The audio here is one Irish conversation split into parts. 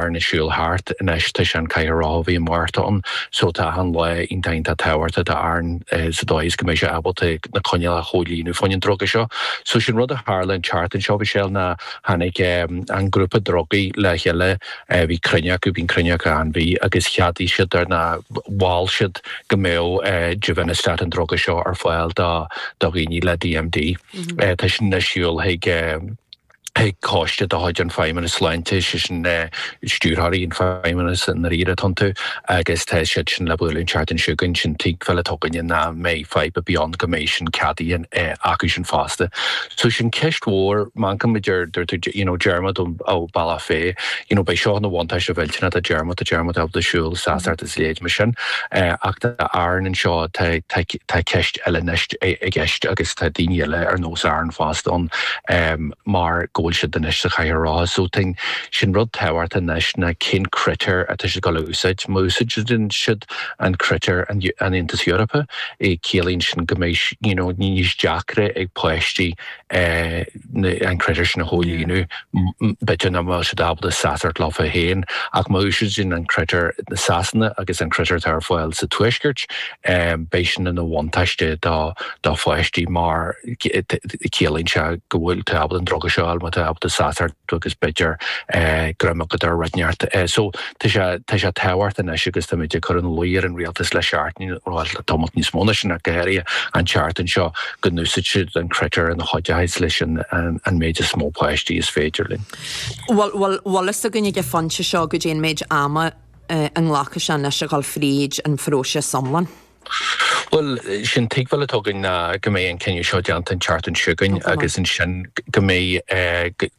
arna siúl thart. Anois tá sé sa chathaoir rotha ó mhí an Mhárta ann so tá achan lá iontach tábhachtach d'Aaron sa dóigh is go mbeidh sé ábalta na coinníollacha a chomhlíonadh fá choinne an druga seo. So sin rud a tharla an tseachtain seo a Mhichelle ná tháinig an grúpa drugaí le chéile bhí cruinniú acu, bíonn cruinniú acu achan mhí agus cheadaigh siad ar na mhol siad go mbeadh Givinostat an druga seo ar fáil do do dhaoine le DMD. Tá sin anois ag dul chuig. chuig coiste de chuid an Fheidhmeannais Sláinte, sé sin stiúrthóirí an Fheidhmeannais i ndáiríre atá iontu, agus tá siad sin le bualadh an tseachtain seo chugainn. Sin tuigbheáil atá againne nach mbeidh fadhb ar bith ann go mbeidh sin ceadaithe acu sin fosta. So sin ceist mhór, mar a dúirt tú, you know Diarmuid ó Bhealach Féich, you know beidh seo ina bhuntáiste mhillteanach do Dhiarmuid, tá Diarmuid ábalta siúl, leithéid mar sin. Ach tá Aaron anseo, tá ceist eile anois i gceist agus tá daoine eile ar nós Aaron fosta ann mar go bhfuil siad anois sa chathaoir rotha. So tá'n, sin rud tábhachtach anois ná cén critéir atá siad ag goil a úsáid. Má úsáideann siad an critéir an Aontas Eorpach, ciallaíonn sin go mbeidh, you know, níos deacra ag páistí eh, an critéir sin a chomhlíonadh, b'fhéidir nach bhfuil siad ábalta seasacht leofa féin, ach má úsáideann siad an critéir Sasana agus an critéir atá ar fáil sa Tuaisceart, beidh sin ina bhuntáiste do pháistí mar ciallaíonn sé go bhfuil tú ábalta an druga seo a fháil má tá tú ábalta seasacht agus b'fhéidir greim agat ar rud inteacht. Tá sé tábhachtach anois agus táimid ag cur ina luí ar an rialtas le seachtain nó le tamallt níos mó ná sin ach go háirithe an tseachtain seo go n-úsáidfidh siad an critéir a chuideochas leis an méid is mó páistí is féidir linn. Bhfuil bhfuil a fhios againn ag an phointe seo goidé an méid ama a nglacfaidh sé anois a dhul fríd an phróiseas iomlán? Bhuel, sin tuigbheáil atá againn ná go mbeidh an cinneadh seo déanta an tseachtain seo chugainn agus ansin go mbeidh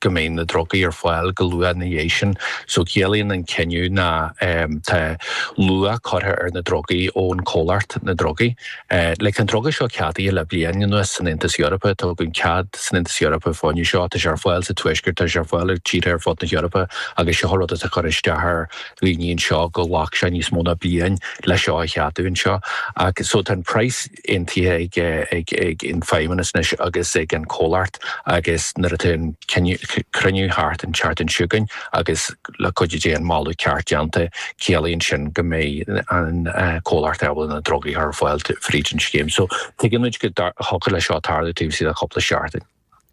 go mbeidh na drugaí ar fáil go luath ina dhiaidh sin. So ciallaíonn an cinneadh ná tá luach curtha ar na drugaí ón chomhlacht, na drugaí. Like an druga seo ceadaithe le bliain anuas san Aontas Eorpach, tugadh cead san Aontas Eorpach fá choinne seo, tá sé ar fáil sa Tuaisceart, tá sé ar fáil i dtíortha ar fud na hEorpa agus seo rud atá ag cur isteach ar dhaoine anseo gur ghlac sé níos mó ná bliain le seo a cheadú anseo. So tá an praghas aontaithe ag an Feidhmeannas anois agus ag an Chomhlacht agus nuair atá an cruinniú thart an tseachtain seo chugainn agus le cuidiú Dé an moladh ceart déanta ciallaíonn sin go mbeidh an Chomhlacht ábalta na drugaí a chur ar fáil fríd an scéim. So tuigeann muid go dtiocfadh le seo tarlú taobh istigh de chúpla seachtain.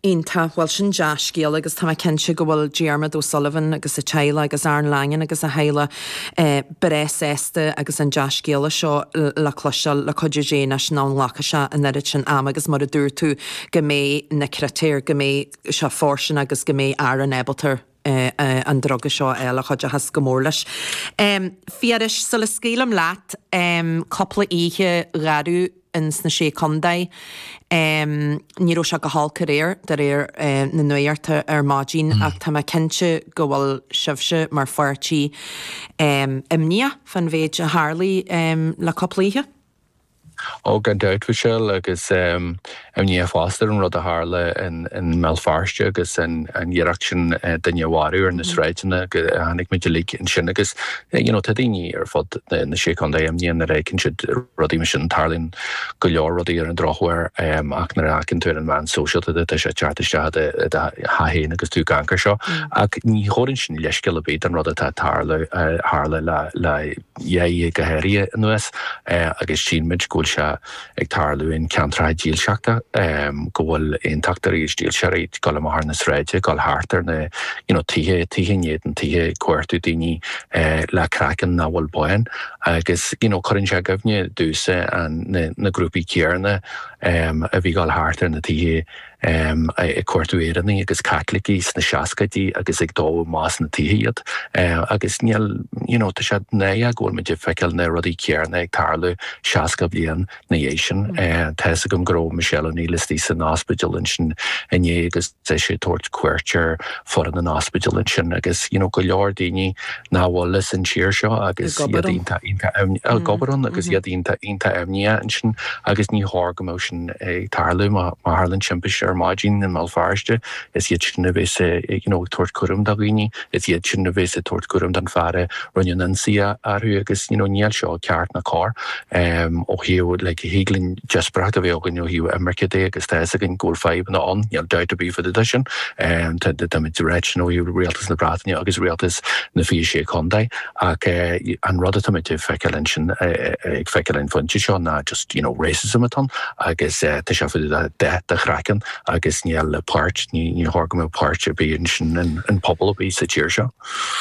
Iontach. Bhuel, sin dea-scéal agus tá mé cinnte go bhfuil Diarmuid O'Sullivan agus a theaghlach agus Aaron Langan agus a theaghlach breá sásta agus an dea-scéala seo le cloisteáil le cuidiú Dé anois nach nglacfaidh sé an oiread sin ama agus mar a dúirt tú go mbeidh na critéir, go mbeidh sé fairsing agus go mbeidh Aaron ábalta an druga seo a fháil a chuideochas go mór leis. Phiarais, sula scaoilim leat, cúpla oíche gharbh in sna Sé Condae, ní raibh sé go holc aréir, de réir na nuaíochta, ar maidin, ach tá mé cinnte go bhfuil sibhse, mar pháirtí, imníoch fán mhéid a tharlaigh le cúpla oíche. Oh, gan dabht, Mhichelle, agus imníoch fosta ar an rud a tharla in mBéal Feirste agus an iarracht sin duine a mharú ar na sráideanna, chonaic muid uilig ansin agus you know tá daoine ar fud na Sé Chontae, imníoch nuair a fheiceann siad rudaí mar sin, tarlaíonn go leor rudaí ar an drochuair ach nuair a fheiceann tú ar an mheán sóisialta tá sé ag teacht isteach i do theach féin agus tú ag amharc air seo ach ní thabharann sin leithscéal ar bith don rud atá ag tarlú, tharla le. dhá oíche go háirithe anuas agus sílmid go bhfuil sé ag tarlú in ceantracha dílseachta, go bhfuil aontachtóirí is dílseoirí ag dul amach ar na sráide, ag dul thart ar na you know tithe, tithe in éadan tithe, ag cuartú daoine le craiceann nach bhfuil bán agus you know cuireann sé i gcuimhne domhsa na grúpaí céarna a bhí ag dul thart ar na tithe. ag cuartú Éireannaigh agus Caitlicigh sna seascaidí agus ag dó amach as na tithe iad agus níl you know tá sé náireach go bhfuil muid ag feiceáil na rudaí céanna ag tarlú seasca bliain ina dhiaidh sin tá fhios agam go raibh Michelle O'Neill istigh san ospidéal ansin inné agus tá sí ag tabhairt cuairt ar foireann an ospidéal ansin agus you know go leor daoine nach bhfuil as an tír seo agus iad ag obair ann agus iad iontach iontach imníoch ansin agus ní chóir go mbeadh sin ag tarlú. Má tharlann timpiste ar maidin i mBéal Feirste, is iad sin a bheas ag tabhairt cúraim do dhaoine, is iad sin a bheas ag tabhairt cúraim don fhear a rinne an ionsaí orthu agus níl seo ceart ná cóir ó thaobh, like, thig linn díospóireacht a bheith againn ó thaobh imirce de agus tá fhios againn go bhfuil fadhbanna ann, níl dabht ar bith fá dtaobh de sin. Táimid reictin ó thaobh rialtas na Breataine agus rialtas na 26 Chontae. Ach an rud atá muid ag feiceáil ansin, ag feiceáil an phointe seo, ná just, you know, racism atá ann agus tá sé fá dtaobh de dath do chraiceann agus níl páirt, ní chóir go mbeadh páirt ar bith ansin in pobal ar bith sa tír seo.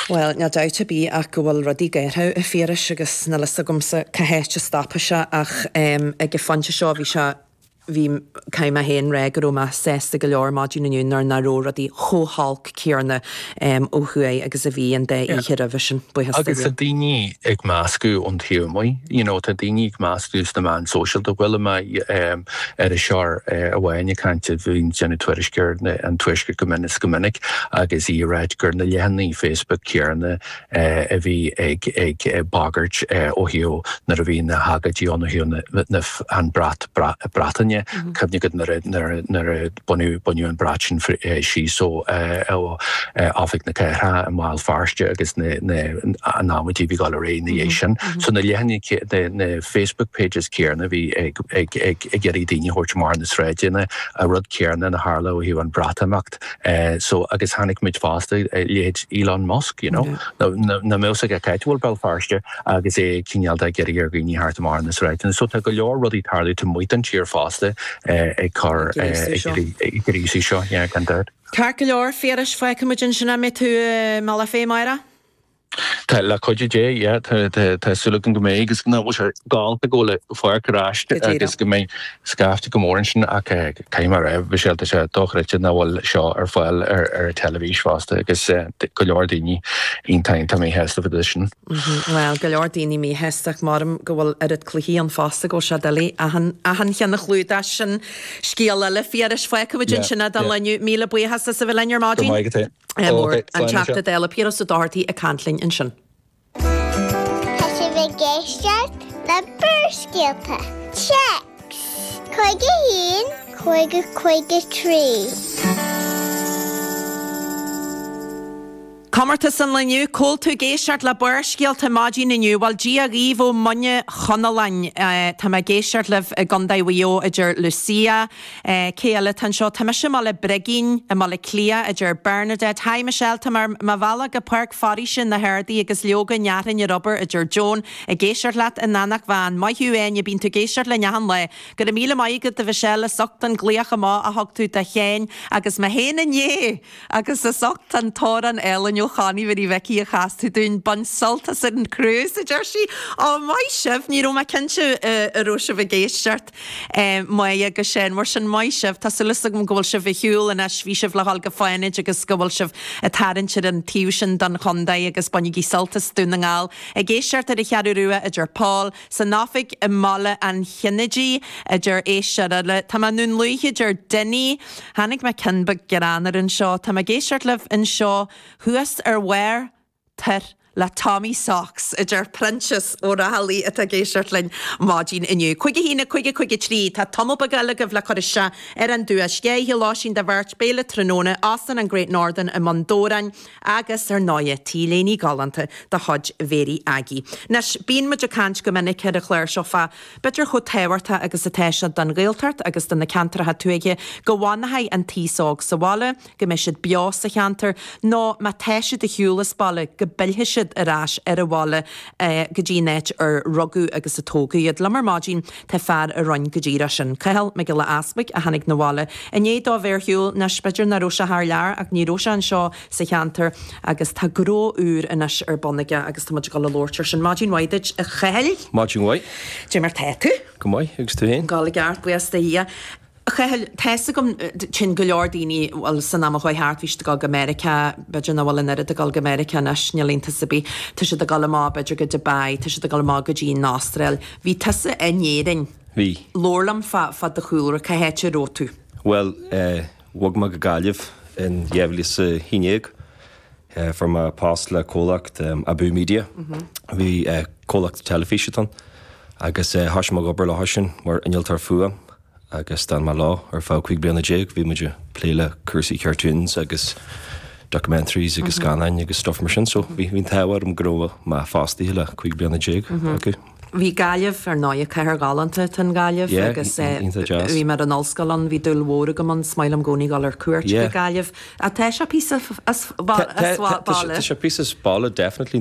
Bhuel, níl dabht ar bith ach go bhfuil rudaí gaotha, a Phiarais, agus níl fhios agamsa cá háit a stopfaidh sé ach, em, ag an phointe seo bhí sé, bhí caithfidh mé féin a rá go raibh mé sásta go leor maidin inniu nuair nach raibh rudaí chomh holc céarna ó thuaidh agus a bhí an dá oíche roimhe sin. Buíochas do Dhia. Agus tá daoine ag meascadh ón taobh amuigh, you know, tá daoine ag meascadh sna meáin sóisialta. Chuala mé iriseoir amháin ag caint a bhíonn ag déanamh tuairisc ar an Tuaisceart go mion is go minic agus í ag ráit gur na leathanaigh Facebook céarna, a bhí ag bagairt ó thaobh nuair a bhí na hagóidí ann ó thaobh an brat Breataine, cuimhnigh go nuair a baineadh an brat sin síos ó Oifig na Cathrach i mBéal Feirste agus an amaidí a bhí ag dul ar aghaidh ina dhiaidh sin. So na leathanaigh, na Facebook pages céanna a bhí ag iarraidh daoine a thabhairt amach ar na sráideanna, an rud céanna a tharla ó thaobh an Bhreatimeacht. Act so agus chonaic muid fosta a leithéid Elon Musk you know nach mbeadh a fhios aige cáit a bhfuil Béal Feirste agus é cineál de ag iarraidh ar dhaoine theacht amach ar na sráideanna so tá go leor rudaí ag tarlú taobh amuigh den tír fosta ag cur ag gríosú seo yeah gan dabht. Ceart go leor, Phiarais, fágfaimid ansin, an mbeidh tú i mBealach Féich amárach. Tá, le cuidiú Dé, yeah. Tá, tá, tá súil agam go mbeidh agus nach bhfuil sé galánta go bhfuil an pháirc ar ais Go agus díreach. go mbeidh scaifte go mór ansin ach caithfidh mé a rá, Mhichelle, tá sé dochreidte nach bhfuil seo ar fáil ar, ar an teilifís fosta agus tá go leor daoine iontach, iontach míshásta fá dtaobh de sin. Mhm, bhuel, go leor daoine míshásta ach maram go bhfuil oiread cluichí ann fosta go bhfuil sé doiligh achan, achan cheann a chlúdach sin scéal eile a Phiarais. Fágfaimid Yeah, ansin é don yeah. lá inniu Míle buíochas as a bheith linn ar Go maidin. maith agat. Mór, an Teachta Dála Piaras Ó Dochartaigh ag caint linn ansin. Tá sibh ag éisteacht le Barrscéalta, Text, 51 5053. Comórtas an lae inniu, cá bhfuil tú ag éisteacht le Barrscéalta maidin inniu? Bhuel, Dia dhaoibh ó Mhuine Chonalláin. Tá mé ag éisteacht libh i gCondae Mhuigh Eo a deir Lucia, Cé eile atá anseo? Tá mise i mBaile Brigín, i mBaile Cliath, a deir Bernadette. Hi Michelle, táim ar mo bhealach go Páirc Foraoise na hArdaí agus leoga ní déarfainn gur obair, a deir Joan, ag éisteacht leat in Eanach Mheáin. Maith thú, a Áine, bíonn tú ag éisteacht linn achan lá. Go raibh míle maith agat, a Mhichelle, as ucht an glaoch amach a thug tú do Shane agus mé féin inné! Agus as ucht an t-amhrán álainn ó Chonnie Mhary Mhicí a chas tú dúinn. Bain sult as ar an cruise, a deir sí. Ó, maith sibh! Ní raibh mé cinnte an raibh sibh ag éisteacht. Maith agus Shane. Mar sin, maith sibh. Tá súil as agam go bhfuil sibh ar shiúl anois. Bhí sibh le dhul go Fánaid agus go bhfuil sibh ag tarraingt ar an taobh sin don chondae agus bainigí sult as Dún na nGall. Ag éisteacht ar an Cheathrú Rua, a deir Paul. San oifig i mBaile an Chinnéidigh, a deir Aodh, Sirele, tá mé i nDún Lúiche, a deir Dinny. Chonaic mé ceann beag greannmhar anseo. Tá mé ag éisteacht libh anseo thuas ar Where? Tar le Tommy Socks, a deir Proinsias Ó Raghallaigh, atá ag éisteacht linn maidin inniu. Cuig a haon, cuig, cuig a trí. Tá tamall beag eile agaibh le cur isteach ar an duais. Oíche lóistín do bheirt, béile tráthnóna, Óstán an Great Northern i mBun Dobhráin, Agus, ar ndóigh, t-léine galánta de chuid Mhary Aggie. Anois, bíonn muid ag caint go minic ar an chlár seo fá b'fhéidir chomh tábhachtach agus atá sé don Ghaeltacht agus do na ceantracha tuaithe go bhfanfaidh an t-aos óg sa bhaile, go mbeidh siad beo sa cheantar, nó má tá siad ar shiúl as baile, go bpillfidh siad ar ais ar an bhaile, go dtí an áit ar rugadh agus a tógadh iad. Liom ar maidin. Tá fear a rinne go díreach sin, Cathal Mac Giolla Easpaig, a tháinig na bhaile i ndiaidh dó a bheith ar shiúl, anois b'fhéidir nach raibh sé thar lear ach ní raibh sé anseo sa cheantar agus tá gnó úr anois ar bun aige agus tá muid ag dul a labhairt air sin. Maidin mhaith duit, a Chathail! Maidin mhaith. Dé mar tá tú? Go maith, agus tú fhéin? Go gearr, buíochas do Dhia. Chathail, tá a fhios agam téann go leor daoine, bhuel, san am a chuaigh thart, bhí siad ag dul go Meiriceá, b'fhéidir nach bhfuil an oiread ag dul go Meiriceá anois, níl iontas ar bith. Tá siad ag dul amach b'fhéidir go Dubai, tá siad ag dul amach go dtí an Astráil. Bhí tusa in Éirinn. Bhí. Labhair liom fá fá do chúlra, cá háit a raibh tú? Bhuel, eh, bhog mé go Gaillimh in 2011. Fuair mé post le comhlacht Abú Media, comhlacht teilifíse ann, agus thosaigh mé ag obair leo ansin mar innealtóir fuaime agus d'fhan mé leo ar feadh cúig bliana déag. Bhí muid ag plé le cúrsaí cartoons agus documentaries agus scannáin agus stuff mar sin, so bhí an t-ádh orm go raibh mé fostaithe le cúig bliana déag acu. Bhí Gaillimh, ar ndóigh, cathair ghalánta atá in Gaillimh agus bhí mé ar an ollscoil ann, bhí dúil mhór agam ann, is maith liom i gcónaí dul ar cuairt go Gaillimh. Tá sé píosa as baile. Tá sé píosa as baile, definitely.